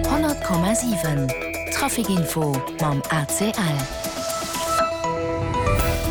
100,7 Trafic Info mam ACL.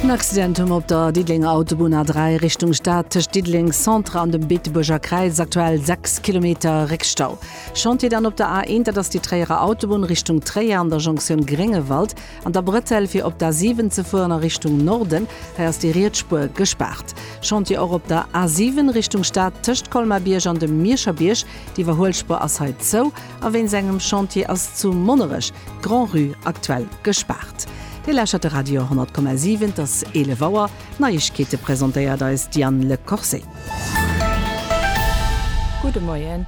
En Accidentum op der Diddelenger Autobunn A3 Richtung Stad tëscht Diddeleng Centre an dem Beetebuerger Kräiz, aktuell 6 Kilometer Réckstau. Chantier dann op der A1, dat ass déi Tréierer Autobunn Richtung Tréier an der Jonktioun Gréngewald an der Bretelle fir op d'A7 ze fueren a Richtung Norden, hei ass déi riets Spuer gespaart. Chantier och op der A7 Richtung Stad tëscht Colmar-Bierg an dem Mierscher Bierg. D'Iwwerhuelspuer ass hei zou a wéinst engem Chantier ass zu Monnerech d'Grand-Rue aktuell gespaart. Dir lauschtert de Radio 100,7, et ass 11 Auer. D'Neiegkeete presentéiert eis d'Diane Le Corset. Gudde Moien.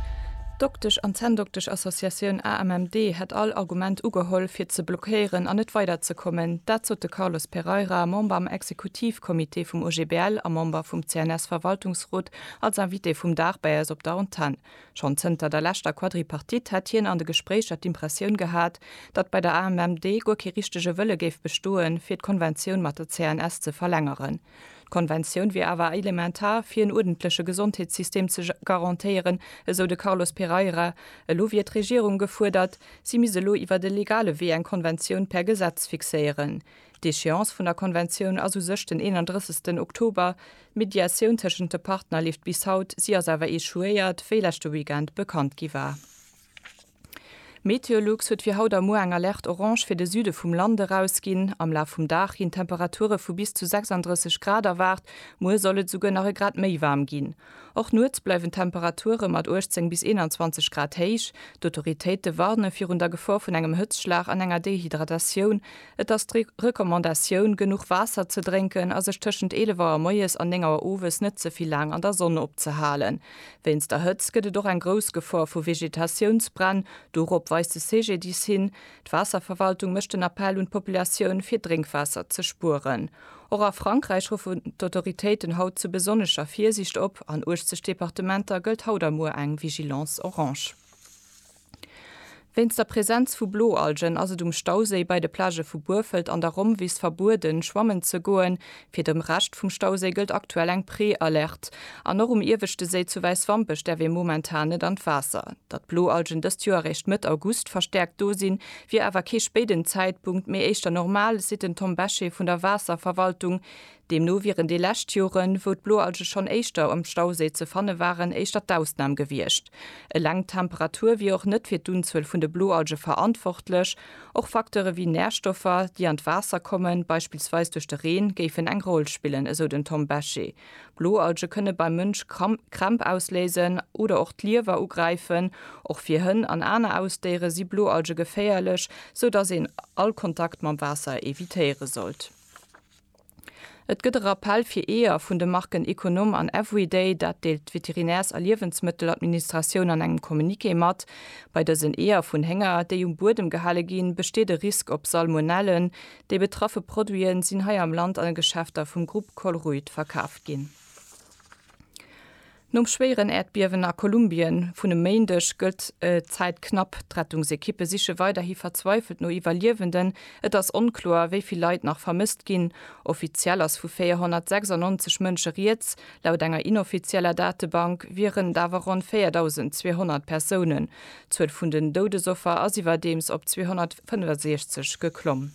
D'Doktesch an Zänndoktesch-Associatioun AMMD hätt all Argument ugeholl, fir ze blockéieren an net weiderzekommen. Dat sot de Carlos Pereira, Member am Exekutivcomité vum OGBL a Member vum CNS-Verwaltungsrot, Als Invité vum Dag bäi eis op der Antenn. Schonn zënter der leschter Quadripartite hätt hien an de Gespréicher d'Impressioun gehat, datt bei der AMMD guer kee richtege Wëlle géif bestoen, fir d'Konventioun mat der CNS ze verlängeren. D'Konventioun wier awer elementar, fir en uerdentleche Gesondheetssystem ze garantéieren, esou de Carlos Pereira. Elo wier d'Regierung gefuerdert, si misst elo iwwer e legale Wee eng Konventioun per Gesetz fixéieren. D'Echéance vun der Konventioun ass u sech den 31 Oktober, d'Mediatioun tëschent de Partner leeft bis haut, si ass awer echouéiert, wéi leschte Weekend bekannt gi war. Meteolux huet fir haut a muer eng Alerte orange fir de Süde vum Land erausginn. Am Laf vum Dag ginn Temperature vu bis zu 36 Grad erwaart, muer soll et esouguer nach e Grad méi waarm ginn. Och nuets bleiwen d'Temperature mat 18 bis 21 Grad héich. D'Autoritéite warne virun der Gefor vun engem Hëtzschlag an enger Dehydratatioun. Et ass d'Recommandatioun, genuch Waasser ze drénken a sech tëschent 11 Auer moies an 9 Auer owes net ze vill laang an der Sonn opzehalen. Wéinst der Hëtzt gëtt et och eng grouss Gefor vu Vegetatiounsbränn, dorop weist de CGDIS hin. D'Waasserverwaltung mécht den Appell un d'Populatioun, fir Drénkwaasser ze spueren. Och a Frankräich ruffen d'Autoritéiten haut zu besonnescher Virsiicht op. An 80 Departementer gëllt haut a muer eng Vigilance orange. Wéinst der Presenz vu Bloalgen ass et um Stauséi bei de Plagë vu Burfelt an der Rommwiss verbueden, schwammen ze goen. Fir de Rescht vum Stauséi gëllt aktuell eng Prealerte. An och um ieweschte Séi zu Wäiswampech däerf ee momentan net an d'Waasser. Datt d'Bloalgen dëst Joer eréischt Mëtt August verstäerkt do sinn, wier awer kee spéiden Zäitpunkt, mee éischter normal, seet den Tom Bechet vun der Waasserverwaltung. Deemno wieren déi lescht Joren, wou d'Bloalge schonn éischter um Stauséi ze fanne waren, éischter d'Ausnam gewiescht. Eleng d'Temperatur wier och net fir d'Unzuel vun de Bloalge verantwortlech. Och Facteure wéi Närstoffer, déi an d'Waasser kommen, beispillsweis duerch de Reen, géifen eng Roll spillen, esou den Tom Bechet. Bloalge kënne beim Mënsch Krämp ausléisen oder och d'Liewer ugräifen. Och fir Hënn an aner Ausdéiere si Bloalge geféierlech, sou datt een all Kontakt mam Waasser evitéiere sollt. Et gëtt e Rappell fir Eeër vun de Marken Econom an Everyday, dat deelt d'Veterinärs a Liewensmëtteladministratioun an engem Communiqué mat. Bei dësen Eeër vun Hénger, déi um Buedem gehale ginn, besteet e Risk op Salmonellen, Déi betraffe Produite sinn hei am Land an de Geschäfter vum Grupp Colruyt verkaaft ginn. Nom schwéieren Äerdbiewen a Kolumbien vun e Méindeg gëllt d'Zäit knapp. D'Rettungsekippe siche weiderhi verzweifelt no Iwwerliewenden. Et ass onkloer, wéi vill Leit nach vermësst ginn. Offiziell ass vu 496 Mënsche rieds. Laut enger inoffizieller Datebank wieren et awer ronn 4.200 Persounen. D'Zuel vun den Doudesoffer ass iwwerdeems op 265 geklomm.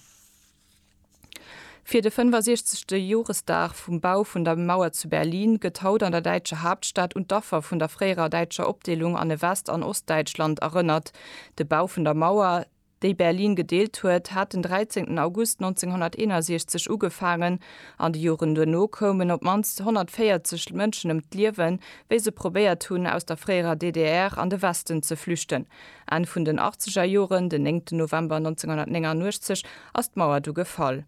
Fir de 65. Joresdag vum Bau vun der Mauer zu Berlin gëtt haut an der däitscher Haaptstad un d'Affer vun der fréierer däitscher Opdeelung an e West an Ostdäitschland erënnert. De Bau vun der Mauer, déi Berlin gedeelt huet, hat den 13 August 1961 ugefaangen. An de Joren duerno koumen op d'mannst 140 Mënschen ëm d'Liewen, wéi se probéiert hunn, aus der fréierer DDR an de Westen ze flüchten. Enn vun den Achtzegerjoren, den 9 November 1989, ass d'Mauer du gefall.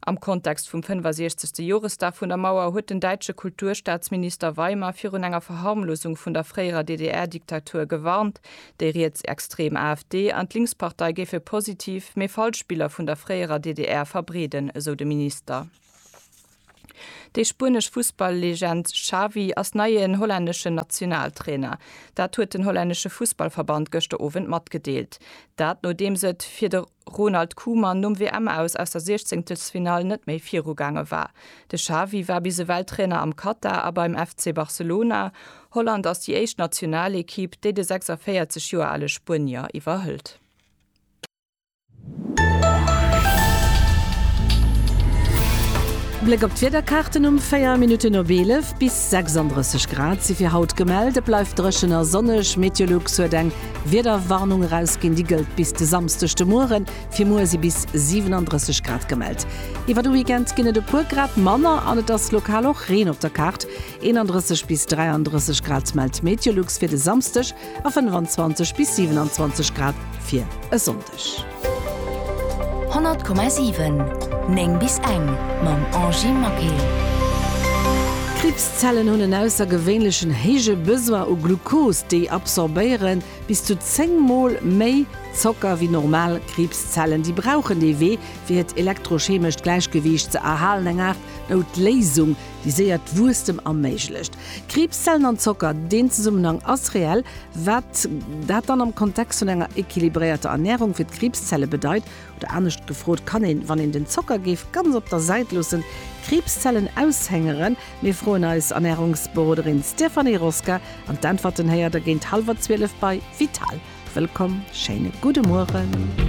Am Kontext vum 65. Joresdag vun der Mauer huet den däitsche Kulturstaatsminister Weimer virun enger Verharmlosung vun der fréierer DDR-Diktatur gewarnt. Déi rietsextrem AfD an d'Linkspartei géife positiv, mee falsch Biller vun der fréierer DDR verbreeden, esou de Minister. Déi spuenesch Fussball-Legend Xavi ass neien hollänneschen Nationaltrainer. Dat huet den hollännesche Fussballverband gëschter Owend matgedeelt. Dat nodeems et fir de Ronald Koeman nom WM-Aus aus der Siechzehnktelsfinall net méi viru gaange war. De Xavi war bis ewell Trainer am Katar a beim FC Barcelona. Holland ass déi éischt Nationalekipp, déi de 46 Joer ale Spuenier iwwerhëlt. Bléck op d'Wiederkaarten, Um 4 Minutten op 11 bis 36 Grad si fir haut gemellt. Et bleift dréchen a sonneg. Meteolux huet eng Wiederwarnung erausginn, déi gëllt bis de Samsdeg de Mueren. Fir muer si bis 37 Grad gemellt. Iwwer de Weekend ginn et e puer Grad manner an et ass lokal och Reen op der Kaart. 31 bis 33 Grad mellt Meteolux fir de Samsdeg. a 25 bis 27 Grad fir e Sonndeg. 100,7 9 bis eng mam Angie Maquet. Kriibszellen hunn en aussergewéinlechen héije Besoin u Glucose, déi absorbéiere bis zu 10 mol méi Zocker wéi normal Kriibszellen. Déi brauchen dee Wee, fir hiert elektrochemescht Gläichgewiicht ze erhalen, eng Aart Noutléisung, déi séiert Wuesstem erméiglecht. Kriibszellen an Zocker, deen Zesummenhang ass reell. Wat dat dann am Kontext vun enger equilibréierter Ernärung fir d'Kriibszelle bedeit, oder anescht gefrot, kann een, wann een den Zocker géif ganz op der Säit loossen, d'Kriibszellen aushengeren? Mir froen eis Ernärungsberoderin Stéphanie Rosca an d'Äntwerten héiert der géint hallwer zwielef bei Vital. Wëllkomm, schéine gudde Mueren.